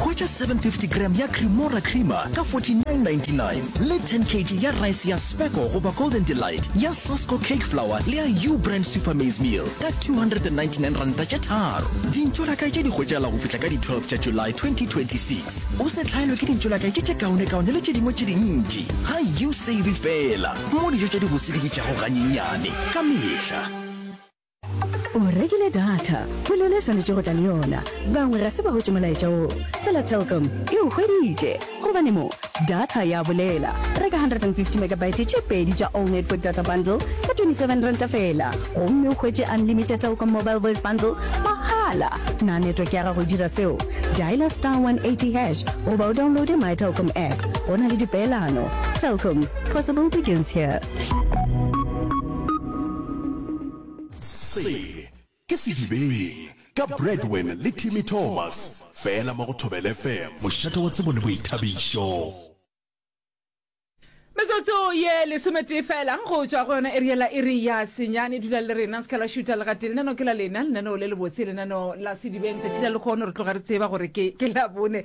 Hwetša 750 g ya Cremora Creamer ka 49.99 le 10 kg ya rice ya Spekko goba Golden Delight, ya Sasko Cake Flour le ya U Brand Super Maize Meal ka R299 tše tharo. Dintšolakae tše di hwetšagala go fihla ka di 12 tša July 2026. O se hlaelwe ke dintšolakae tše tše kaonekaone le tše dingwe tše dintši ga U Save Fela mo dijo tša dibose di bitšago ganyenyane ka mehla. o rekile data go le yone swanetše go tla le yona bangwe ga se ba gotše molaetša o fela telcom e o hweditše gobane mo data ya bolela reka 150 megabyte tše pedi tša all network data bundle ka 27 ranta fela gomme o hwetše unlimited telcom mobile voice bundle mahala na network ya gago e dira seo diala star 180 hash goba o downloade my telcom app go na le dipeelano telcom possible begins here Se ke Sedibeng ka Bradwin le Timmy Thomas fela mo go Thobela FM, mošate wa tsebo le boithabišo. Metsotso ye lesometee fela go tšwa go yona area la iri ya senyane dula le rena seka la šuta legate lenano ke la lena lenaneo le lebotse lenaneo la sedibeng tšatši la lekgono re tloga re tseba gore ke ke labone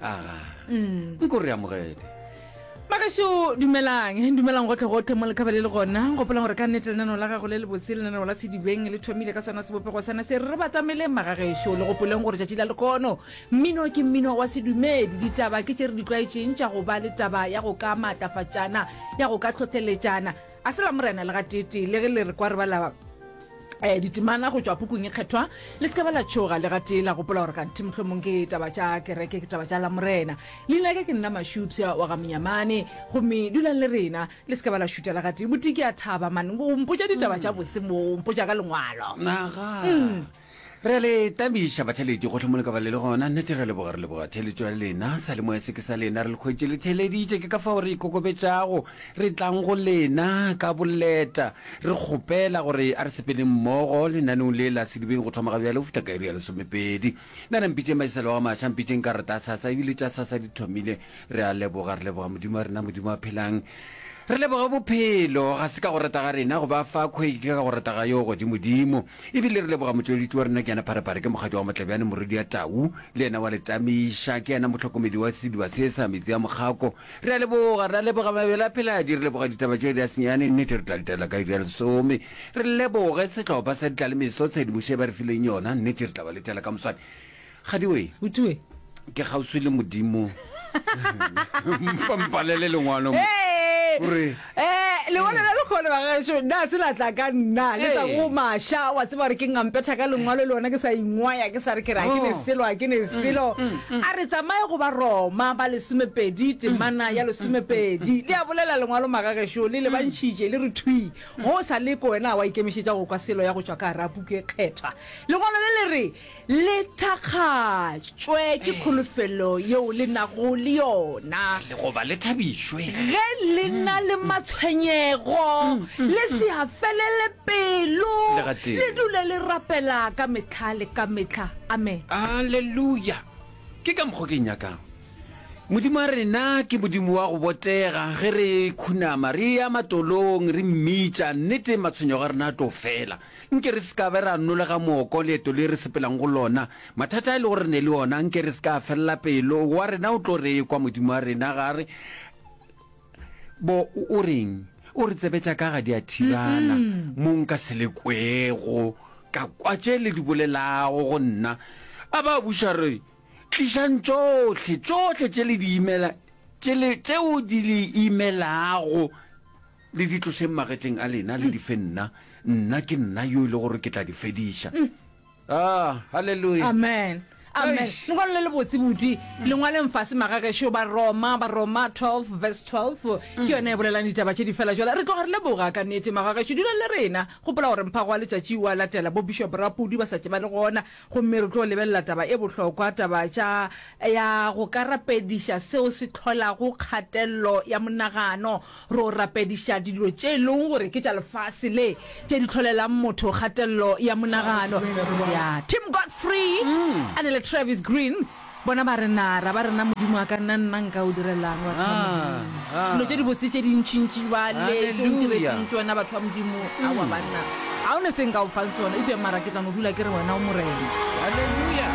aga nko re amogele magašo dumelang dumelang gotlhe gotlhe mo lekgaba le le gona gopolang gore ka nnete lenaneo la gago le le botse lenaneo la sedibeng le thomile ka sona sebopego sana se re batamele magagešo le gopoleng gore tšatši la lekono mmino ke mmino wa sedumedi ditaba ke tše re di tlwaetšeng tša go ba le taba ya go ka maatlafatšana ya go ka tlhotlheletšana A se la Morena le gateetee, le ge le re kwa re bala um ditemana go tšwa pukung e kgethwa, le se ka ba la tšhoga le gatee la gopola gore kganthe mohlomong ke taba tša kereke, ke taba tša la Morena. Leina ke ke nna Mašupša wa ga Monyamane, gomme dulang le rena, le se ka ba la šuta le gatee. Botee ke a thaba man, o mpotša ditaba tša bose mo, o mpotša ka lengwalo. Naga. Re a le tabiša batheledi gohle mo le ka ba le le gona. Nnete re a leboga, re leboga theeletšo ya lena. Salemoya se ke sa lena, re le hwetše le theeleditše, ke ka fao re ikokobetšago, re tlang go lena ka boleta, re kgopela gore a re sepeleng mmogo lenaneong le la sedibeng go thoma ga bjale go fihla ka iri ya lesomepedi. Nana mpitšeng mašisalo a maša, mpitšeng ka rata sasa, ebile tša sasa di thomile. Re a leboga, re leboga Modimo wa rena, Modimo a phelang. Re leboga bophelo, ga se ka go rata ga rena go ba fa khweke, ke ka go rata ga Yo Godimodimo. E bile re leboga motšweletši wa rena Kiana Pharephare, ke mokgatšwa wa Motlabjane morwedi ya Tau, le yena wa le tsameiša, ke yena motlhokomedi wa sediba se sa metsi a mokgako. Re a leboga, re a leboga mabele a pheladi, re leboga ditaba tše di a senyane, nnete re tla letela ka iri ya lesome. Re leboge sehlopha sa ditlalemeso tshedimošo e ba re fileng yona, nnete re tla ba letela ka moswane. Kgadiwe. Butue. Ke kgauswi le Modimo. Mpa mpalele lengwalo mo. Gore. Eh, lengwalo la lekgolo ba gašo nna se latla ka nna le tsa go masha wa tseba gore ke ngampetha ka lengwalo le lona ke sa ingwaya ke sa re ke ra ke ne oh. selo ke ne mm, selo mm, mm. a re tsamaye go ba Roma ba lesomepedi temana ya lesomepedi le a bolela lengwalo magagesho le le bantšhitše le re thwi go sa le ko wena wa ikemišetša go kwa selo ya go tšwa ka rapuku e kgethwa lengwalo le le re Le thakgatšwe ke kholofelo yeo le nago le yona. Le goba le thabišwe. Ge le na le matshwenyego, le se a felele pelo, Le gatee. le dule le rapela ka mehla le ka mehla. Amen. Aleluya! Ke ka mokgwa ke nyakago. Modimo wa rena ke Modimo wa go botega. Ge re khunama, re eya matolong, re mmitša, nnete matshwenyego a rena a tlo fela. Nke re se ka be ra nolega mooko leeto le re sepelang go lona. Mathata a e lego re ne le ona, nke re se ka felela pelo. Wa rena o tlo re ekwa, Modimo wa rena, ga re bo o reng? O re tsebetša ka ga diathirana. Mo nka se le kwego, ka kwa tše le di bolelago go nna. A ba buša re, Tlišang tšohle, tšohle tše le di imela, tše le, tšeo di le imelago. Le di tlošeng magetleng a lena, le di fe nna. Nna ke nna yo e le gore ke tla di fediša. Ah, haleluya! Amen. Amen. Eish. Lengwalo le le botse budi. Lengwaleng fase magagešo ba Roma, ba Roma 12 verse 12. Ke yona e bolelang ditaba tše di fela jwale. Re tloga re leboga ka nete magagešo. Dula le rena. Gopola gore mphago wa letšatši o a latela. Bo Bishop Rapudi ba sa tšeba le gona. Gomme re tlo lebelela taba e bohlokwa, taba tša, ya go ka rapediša seo se hlolago kgatelelo ya monagano. Ro rapediša dilo tše e lego gore ke tša lefase le, tše di hlolelang motho kgatelelo ya monagano. Ya. Tim Godfrey a ne le Travis Greene. Bona ba re, Na ra ba rena Modimo a ka nna, nna nka o direla'ng, batho ba Modimo? Dilo tše dibotse tše dintšintši bjale tše o ntiretseng tšona, batho ba Modimo. Aowa, banna, ga go ne se nka o fang sona, eupša mara ke tla no dula ke re wena o Morena. Haleluya!